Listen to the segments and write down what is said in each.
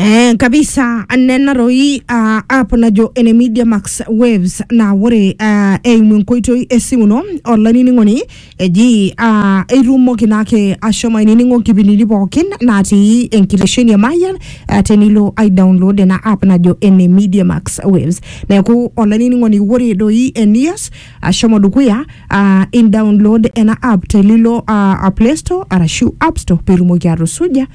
Eh, kabisa nena roi uh, app najo ene media max waves na ore uh, eimu enkoitoi esimu ino olainining'oni eji uh, eitumoki naake ashomo ainining'o nkipindini pookin natii enkitesheni e mayian uh, tenilo ai download ena app najo ene media max waves neeku olainining'oni ore doi enias ashomo dukuya uh, in download ena app telilo uh, play store arashu app store peitumoki atusuja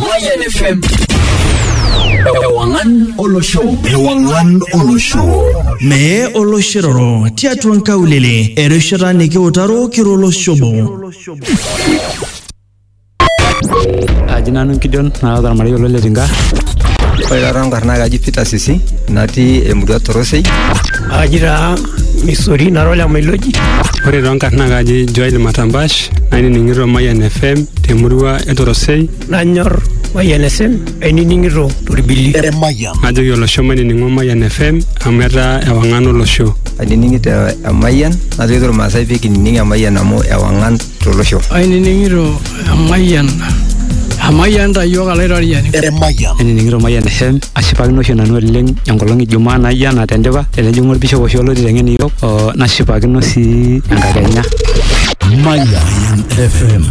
Mayan FM. Ewangan Olosho. Ewangan Olosho. Mee oloshiroro tiatua nkaulele erishata nikiutaro kiro oloshobo. aji nanu nkidion naata ormarei olo le tinka ore taata nkarna kaji peter sisi natii emurua torosei aji taa Missouri na Rola Meloji. Ore too nkarn naa kaji Joel Matambash nainining'ito Mayian FM temurua e Torosei. Nanyor Mayian FM ainining'ito Torbili. Eremayian. Najoki olosho mainining'o Mayian FM amu etaa ewang'an olosho. Ainining'ito Emayian najoki Tormaasai pee kinining Emayian amu ewang'an tolosho. Ainining'ito emayian emayian ta iyiook alaitoriani. Emayian. Ainining'ito Mayian FM ashipakino oshi nanu oleng enkolong e Jumaa naijo ena tendipa tenejing'u olbishop oshi olo aiteng'en iyiook oo nashipakino sii enkakenya. Mayian FM.